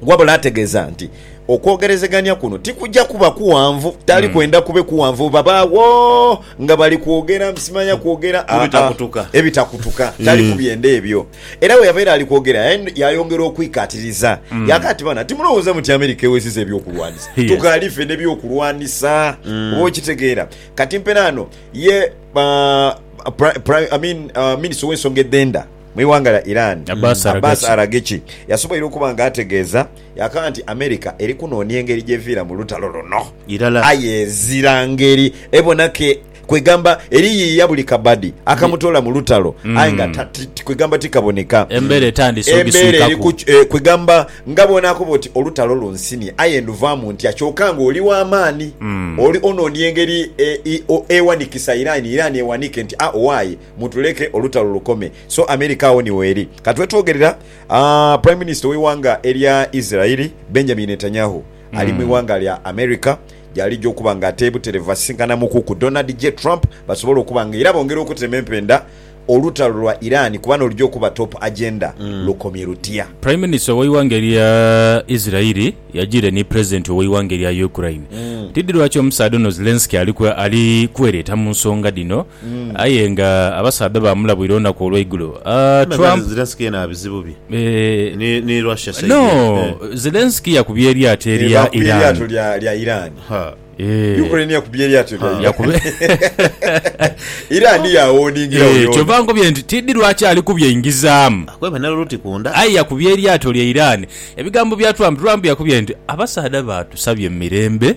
wabula ategeeza nti okwogerezeganya kuno tikujja kuba kughanvu tali kwenda kube kughanvu babaagho nga bali kwogera simanya kwogera ah, Ebitakutuka. ah, ebitakutuka tali kubyenda ebyo era bwe yabeera ali kwogera yaen- yayongera okwikatiriza yaka ati bana timulowooza muti America ewesiza ebyokulwanisa Yes. tukaali ffe nebyokulwanisa oba okitegeera kati mperaano ye ah, pri- pri- I mean, ah, minisita ow'ensonga edhenda Mu ighanga lya Iran, Abbas Abbas Araghchi. Araghchi yasoboire okuba nga ategeeza yakoba nti America eri kunoonia engeri gy'eviira mu lutalo luno Irala. aye ezira ngeri ebona ke kwegamba eriyiiya buli kabadi akamutoola mu lutalo aye nga ta- ti- ti- kwegamba tikaboneka. Embera etandise Embeera eri ogiswikaku. ku ki- eh, kwegamba nga bw'onaakoba oti olutalo lunsimye aye nduvaamu ntya kyoka ng'oli wa maani. Oli onoonia engeri e- i- o- ewanikisa Iran, Iran ewanike nti a owaaye. Mutuleke olutalo lukome. So America agho ni weeri. Kati wetwogerera, Prime Minister w'eighanga erya Israel, Benjamin Netanyahu, ali mu ighanga lya America, gy'alija okuba nga ate buterevu basisinkana Mukuku Donald J. Trump basobole okuba nga era bongera okutema empenda olutalo lwa Iran kuba n'olugya okuba top agenda lukomye lutya. Prime Minister w'eighanga erya Israel yajiire ni President ow'eighanga erya Ukraine. Tidhi lwaki omusaadha ono Zelensky ali kwereeta mu nsonga dhino. Aye nga abasaadha baamulabwira olunaku olw'eigulo. Trump. Zelensky yena abizibu bye ni Russia side eno. No, Zelensky yakubye eryato erya Iran. Ukraine yakubye eryato erya Iran. Iran yawoningira oyo ono. Kyova nkubye nti tidhi lwaki ali kubye ingizaamu. Akweba ne luti ku nda. Aye yakubye eryato lya Iran. Ebigambo bya Trump, Trump yakubye nti abasaadha baatusabye mu mirembe.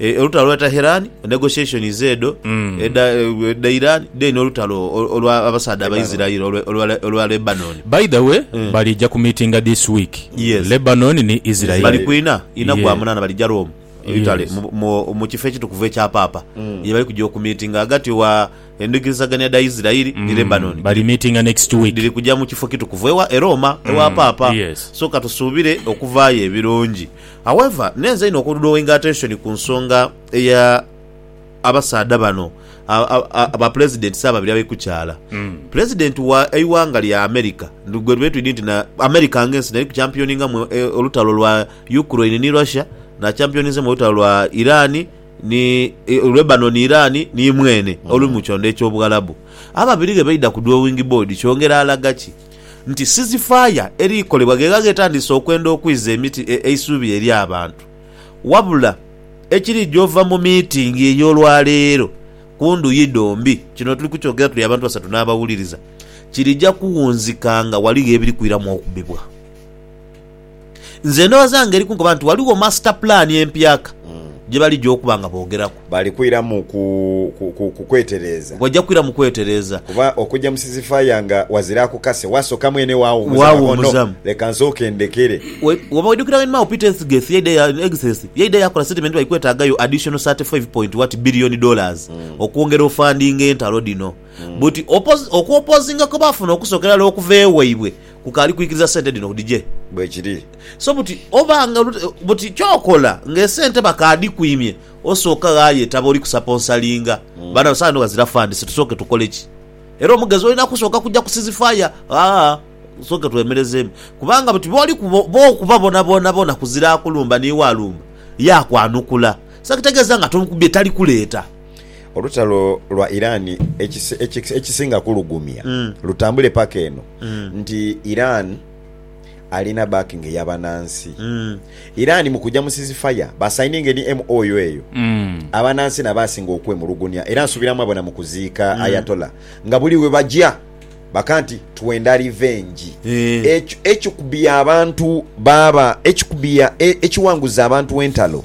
eh, olutalo lwa Taherani, negotiations edho Mm. edha edha Iran, then olutalo ol- olwa abasaadha Abaisiraeli olwe- olwa- olwa Lebanon. by the way Mm. balija ku meetinga this week Yes. lebanon ni israel bali kwina ina Yeah. gwa munana balija Rome Italy Yes. mu- mu- mu kifo ekitukuvu ekya paapa Mm. ye bali kujja okumitinga agati wa endigirizagania dha Isiraeli ni Lebanon Mm. bali meetinga next week dhiri kujja mu kifo kitukuvu ewa e Roma ewa Mm. paapa Yes. so katusuubire okuvaayo ebirungi However, neenza inho oku drawinga attention ku nsonga eya abasaadha bano ba Pulezidenti si ababiri abaikukyaala. Pulezidenti wa eighanga lya America, gwe tube twidi nti na America nga ensi neri ku championinga mu olutalo lwa Ukraine ni Russia, na championinze mu olutalo lwa Iran ni Lebanon Iran ni mweene oli mu kyondo ekyobughalabu. Ababiri ghe baidha ku drawing board kyongera alaga ki? nti sizifaaya eriikolebwa gheegha ghetandise okwenda okwiza emiti eisuubi eri abantu, wabula ekiriija ova mu miitingi ey'olwaleero ku ndhuyi dhombi, kino tuli kukyogera tuli abantu basatu n'abawuliriza, kiriija kuwunzika nga ghaligho ebiri kwiramu okubibwa. Nze ndhowoza nga eri kunkoba nti waliwo master plan empyaka gye baligya okuba nga boogeraku. Bali kwira mu ku, ku, ku, ku kwetereeza. Bajja kwira mu kwetereeza. Kuba okugya mu sizifaya nga wazira akukase, wasooka mwene waawummuzamu agho no, Waawummuzamu. leka nsooke ndekere. We, woba oidhukira when Mao Peter Ethgeth yaidha ya, Egtheth yaidha yakola statement nti baikwetaagayo additional thirty five point what billion dollars okwongera ofundinga entalo dhino. Buti opozi, okwopozinga kwe baafuna okusookera irala okuva ewaibwe, Ku kaali kwikiriza sente dhino udhije. Bwekiri. So buti oba nga buti kyokola nga esente bakaadhikwimye osooka ghaayo etaba oli kusaponsalinga baana bo. Sawa eno ghazira funds tusooke tukole ki? Era omugezi olina kusooka kugya ku ceasefire aa tusooke twemerezeemu kubanga buti booli bookuba boonaboona kuzira akulumba n'iwe alumba yaakwanukula. So ekitegeeza nga tomukubye tali kuleeta. Olutalo lwa Iran ekisinga kulugumya lutambule paka eno nti Iran alina backing eya banansi. Iran mu kuja mu ceasefire ba signinga ni MOU eyo abanansi nabo asinga okwemulugunya era nsubira mwabona mu kuziika Ayatollah nga buli webaja baka nti twenda revenge. Ekikubya abantu baba ekikubya ekiwanguza abantu entalo.